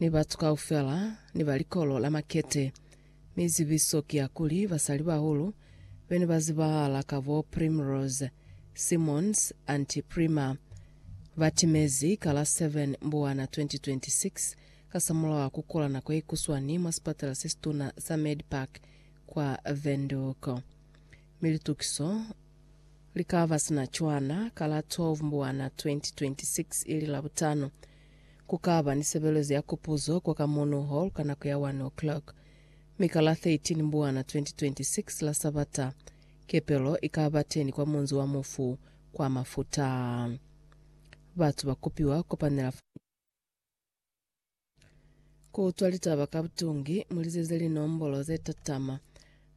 Ni batu kaufela ni ba likolo la makete. Mi zibiso ki ya kuli basalibahulu be ne ba zibahala ka bo Primrose, Simmons, Auntie Prima. Ba timezi ka la 7 Mbuwana 2026 kasamulaho wa ku kula nako ye kuswani mwa sipatala se situna sa Medpark kwa Windhoek. Mi litukiso li ka ba sina cwana ka la 12 Mbuwana 2026 ili Labutano. Ku ka ba ni sebelezo ya Kupuzo kwa ka Morno Hall ka nako ya 1 o'clock. Mi ka la 13 Mbwana 2026, la Sabata, kepelo i ka ba teni kwa Munzi wa Mufu kwa Mafuta. Batu ba kupiwa kopanela fa. Ku utwa litaba ka butungi, mu lizeze linombolo ze tatama,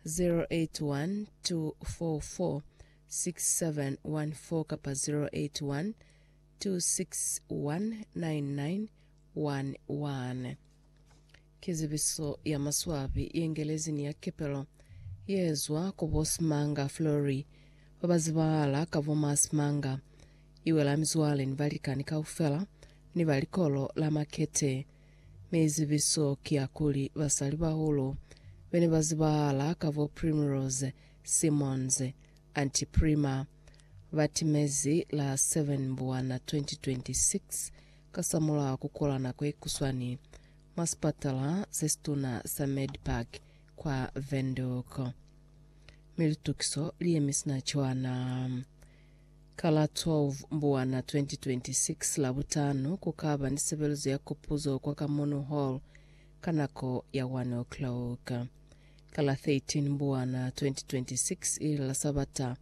081 244 6714 kapa 081 2619911 Ki zibiso ya maswabi ye Ngelezi ni ya Kepelo ye zwa ku bo Simanga Fleury ba ba zibahala ka bo ma Simanga. I wela mizwale ni balikani kaufela ni ba likolo la Makete, mi zibiso ki ya kuli basalibahulu be ne ba zibahala ka bo Primrose Simmons, Anteprima ba timezi la 7 Mbuwana 2026 kasamulaho a ku kola nako ye kuswani mwa sipatala se situna sa Medpark kwa Windhoek, mi litukiso li yemi sina cwana. Ka la 12 Mbuwana 2026, Labutano, ku ka ba ni sebelezo ya Kopuzo kwa Kamunu Hall ka nako ya 1:00. Ka la 13 Mbwana 2026, ili la Sabata,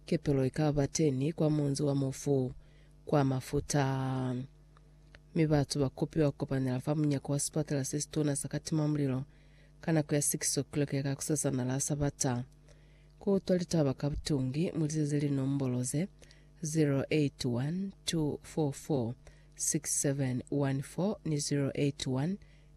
kepelo ikaba teni kwa munzi wa mufu kwa Mafuta, mi batu ba kopiwa kukopanela fa munyako wa sipatala sesituna sa Katima Mulilo ka nako ya 6 o'clock ya kakusasana la Sabata. Ku utwa litaba ka butungi, mu lizeze linombolo ze, 081 244 6714 ni 081